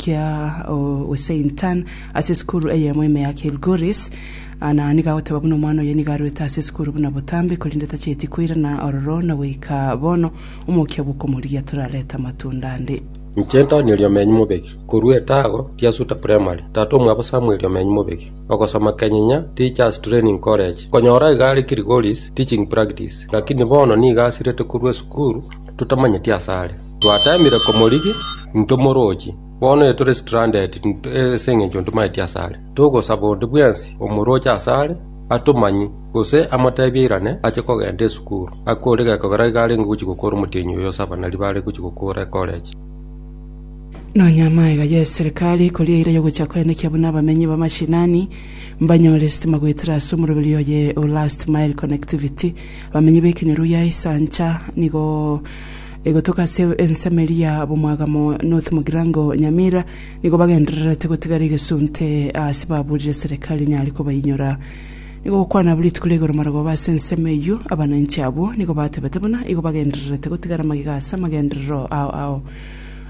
kia Owesaintan ase esukuru eyemo ime ya Kilgoris. Ana nigo agoteba buna omwana oye nigo arwete ase esukuru buna botambe, korende tachieti koirana ororo na goika bono omokia bw'okomorigia torarete amatunda ande. Inche Antonio Riomenyi Mubegi, korwa etago ria Suta Primary, tata omwabo Samuel Riomenyi Mubegi, ogosoma Kenyinya Teachers Training College, nkonyora iga are Kilgoris teaching practice, lakini bono nigo asirete korwa esukuru totamanyeti asare. Twatamire komorigia, intwe morooche. Bono ee tore stranded ase engencho ntomaeti ase are. Togosaba onde bwensi omorooche ase are atomanye, gose amotebie airane ache kogenda esukuru. Akore gekogera iga arenge gochia gokora omotienyi oyo ase abanari bare gochia gokora ecollege. Nonya amaiga y'eserikari ekoria eira y'ogochia koenekia buna abamenyi ba mashinani mbanyore sitima goetera ase omoroberi oye o last mile connectivity. Abamenyi b'ekenyoro gia Isancha nigo Egotoka ase ensemo eria bomwagamo North Mugirango Nyamira nigo bagendererete gotigara egesunte ase baburire serikali enyare kobainyora. Nigo gokwana abwo rituko ria igoro marogoba ase ensemo eyio abananchi abwo nigo batebete buna igo bagendererete gotigara magega ase amagenderero ao ao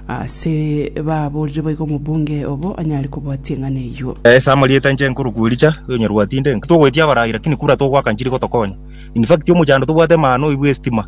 ase baburire boigo omobunge obo anyare kobwatia eng'ana eyio. Ase amarieta inche nkoro kwericha onyorwa tinde togoetia abarai lakini kura togoaka nchiri gotokonya. In fact omochando tobwate maano oibwe estima.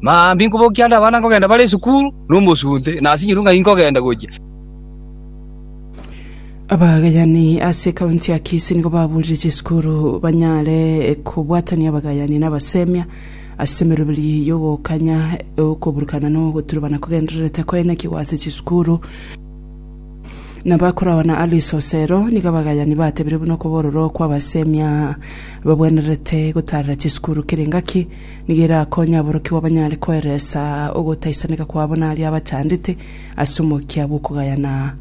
Mambia inkobokia ande abana nkogenda bare esukuru nomosunte, na ase nyirunga inkogenda gochia. Abagayani ase ekaunti ya Kisii nigo babuurire chisukuru banyare kobwatania abagayani na abasemia ase emeroberi y'ogokanya okoburukana na ogoturubana kogendererete koenekigwa ase chisukuru. Nabakoragwa na Alice Osero, nigo abagayani batebire buna okobororo kw'abasemia babwenerete gotaarera chisukuru kere engaki. Nigo erakonye aborokigwa banyare koeresa ogotaisaneka kwabo naria abachandete ase omokia bw'okogayana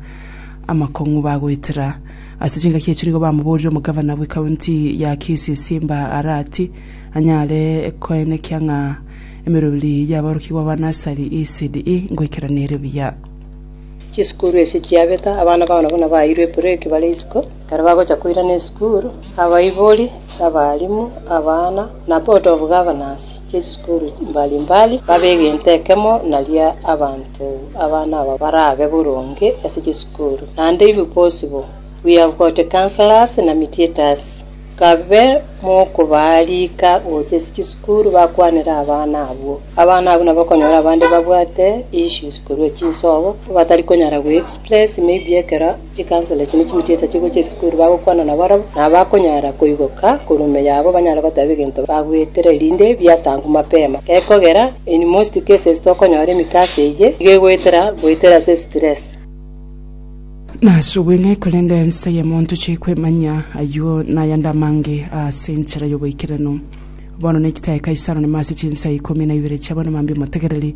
amakong'u bagoetera. Ase chingaki echio nigo bamoborire omogavana bw'ekaunti ya Kisii Simba Arati anyare koenekia ng'a emeroberi y'aborokigwa ba Nursery ECD ngoikeraniire buya. Chisukuru ase chiabeta, abana bao nabwo nabaeirwe epreki bare isiko. Ekero bagocha koirana esukuru, abaibori, abaalimu, abana, na board of governors chie chisukuru mbali mbali babe egento ekemo naria abanto abana aba barabe boronge ase chisukuru. Naende inwe bonsi bo we have got counsellors na mediators nkabe mokobariika gocha ase chisukuru bakwanere abana abwo. Abana abwo nabo okonyora abande babwate issues korwa chinsobo batari konyara go express maybe ekero. Chikansoro echi nigo chigochieta chigocha esukuru bagokwana nabarabwo, na bakonyara koigoka korwa ime yabo banyare goteba egento bagwetire, erinde biatangwe mapema. Gekogera, in most cases tokonyora emikaso eyio nigo egoetera goetera ase stress. Nasubwe ng'ai korende ense y'emonto chie kwemanya ayio nayande amange aase enchera y'oboikeranu? Bono niki tae Kaisaro nime ase chinsa ikomi na ibere chi'abana mambia omotegereri?